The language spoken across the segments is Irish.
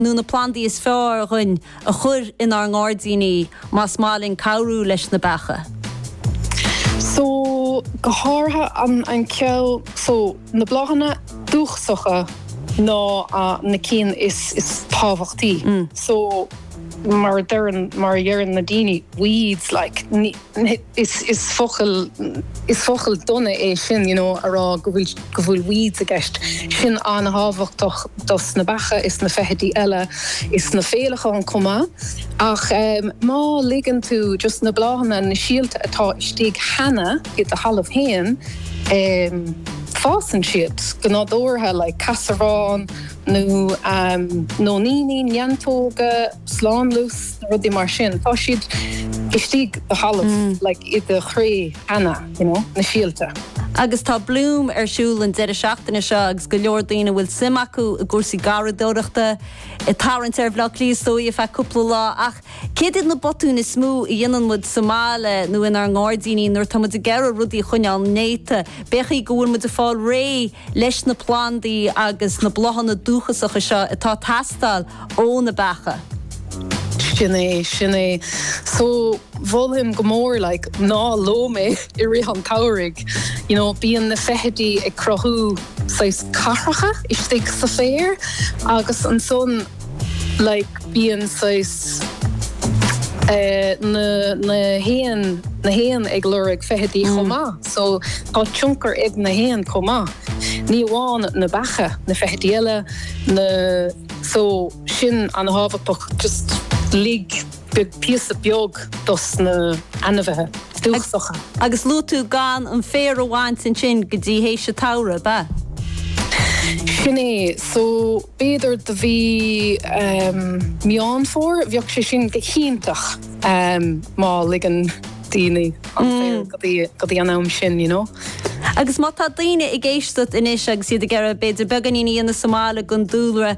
nó na plandaí is fearr dúinn a chur inár ngairdíní más maith linn cabhrú leis na beacha. So, go háirithe an ceann, so, na bláthanna dúchasacha ná na cinn is tábhachtaí. So, mar a deireann, mar a dheireann na daoine, weeds like. is focal is focal dona é sin you know a rá go bhfuil go bhfuil weeds i gceist sin an-thábhachtach dos na beacha is na feithidí eile is na féileacháin chomh maith ach em má ligeann tú just na bláthanna na síolta atá istigh cheana i do thalamh féin em fásann siad go nádúrtha like caisearbhán nó em nóiníní neantóga slánlus na rudaí mar sin tá siad istigh i do thalamh like i do chré cheana you know na síolta. Agus tá Bloom ar siúl an deireadh seachtaine seo agus go leor daoine a bhfuil suim acu i gcúrsaí garraíodóireachta ag tarraingt ar Bhleá Cliath is dóigh ar feadh cúpla lá ach céard iad na botúin is mó a dhéanann muid sa mbaile nó inár ngairdíní nuair atá muid ag iarraidh rudaí a choinneáil néata? B'fhéadfaí go bhfuil muid ag fáil réidh leis na plandaí agus na bláthanna dúchasacha seo atá ag teastáil ó na beacha. Sin é, sin é. So, mholfainn go mór like ná lom é i rith an tsamhraidh. You know, bíonn na feithidí ag cruthú saghas cathracha istigh sa féar agus ansan, like bíonn saghas eh na na héin na héin ag lorg feithidí chomh maith so tá tionchar ag na héin chomh maith ní amháin na beacha na feithidí eile na so sin an-thábhachtach just lig beag píosa beag dos na ainmhithe dúchasacha. Agus luaigh tú gan an féar a bhaint ansin go dtí théis an tsamhraidh, ab ea? Sin é, so b'fhéidir go mí Meán Fómhair, bheadh sé sin go hiontach má ligeann daoine an féar go dtí go dtí an am sin, you know? Agus má tá daoine ag éisteacht anois agus iad ag iarraidh b'fhéidir beagáinín a dhéanamh sa mbaile don dúlra,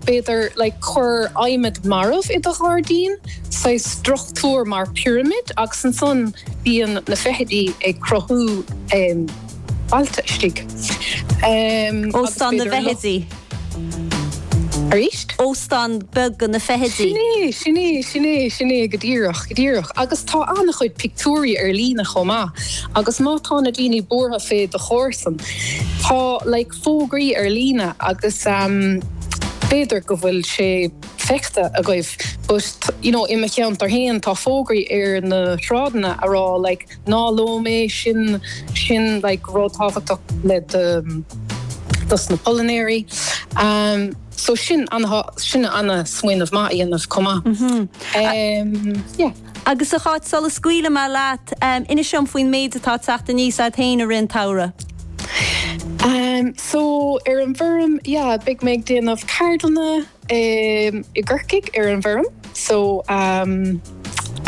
B'fhéidir like cuir adhmad marbh i do ghairdín, saghas struchtúr mar pirimid, agus ansan bíonn na feithidí ag cruthú bailte istigh. Óstán na bhfeithidí. Arís? Óstán beag do na feithidí. Sin é, sin é, sin é, sin é, go díreach, go díreach. Agus tá an-chuid pictiúirí ar líne chomh maith, agus má tá na daoine buartha fé do chomharsan, tá, like, fógraí ar líne agus b'fhéidir go bhfuil sé feicthe agaibh but you know i mo cheantar féin tá fógraí ar na sráideanna a rá like ná lom é sin sin an rud tábhachtach le déanamh dos na pailneoirí um so sin ana sin ana smaoineamh maith a dhéanamh chomh maith. yeah. Agus a Cháit, sula scaoilfidh mé leat, inis dom faoin méid atá ag teacht aníos a'd féin i rith an tsamhraidh. Em, so, ar an bhfeirm, yeah, beidh mé ag déanamh ceardlanna i gCorcaigh ar an bhfeirm. So, em,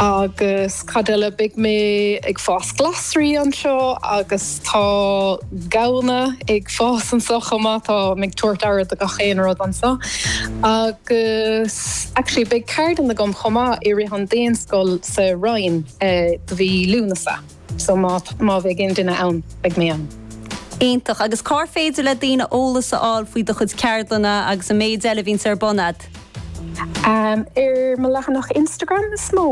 agus cad eile, beidh mé ag fás glasraí anseo agus tá. gamhna ag fás anso chomh maith. Tá mé ag tabhairt aire do gach aon rud anso. Agus actually beidh ceardlann agam chomh maith i rith an Daonscoil sa Rinn i mí Lúnasa. So má bheidh aon duine ann beidh mé ann. Iontach. Agus cár féidir le daoine eolas a fháil faoi do chuid ceardlanna agus an méid eile a bhíonns ar bun agat? Ar mo leathanach Instagram is mó.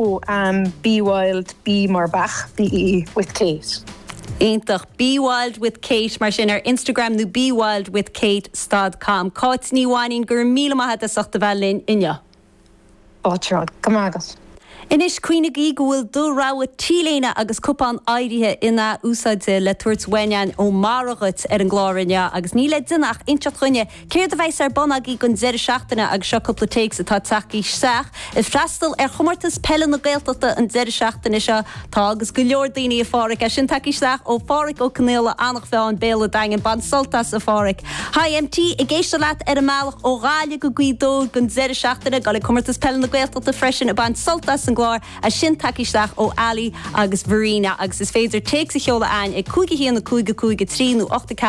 Bee Wild, Bee mar beach, BEE, with Cáit. Iontach. Bee Wild with Cáit mar sin ar Instagram nó Bee Wild with Cáit stad com. Cáit Ní Mhainín, go raibh míle maith a't as ucht a bheith linn inniu. Go raibh maith agat. Anois, cuimhnigí go bhfuil do rogha t-léine agus cupán áirithe in-athúsáidte le tabhairt uainn ó Mireog ar an gclár inniu agus níl le déanamh ach inseacht dhúinn Céard a bheas ar bun agaibh don deireadh seachtaine agus seo cúpla téacs atá ag teacht isteach. Ag freastal ar Chomórtas Peile na Gaeltachta an deireadh seachtaine seo. Tá agus go leor daoine a Pháraic. É sin tagtha isteach ó Pháraic Ó Conaola, Eanach Mheáin, Béal a' Daingean. Bain sult as a Pháraic. Hi MT, ag éisteacht leat ar an mbealach ó Ghaillimh go Gaoth Dobhair don deireadh seachtaine. Ag goil ag Comórtas Peile na Gaeltachta freisin ag baint sult as an gclár. É sin tagtha isteach ó Ali agus Verena. Agus is féidir téacs a sheoladh chugainn ag 5 1 5 5 3 nó 0 8 4.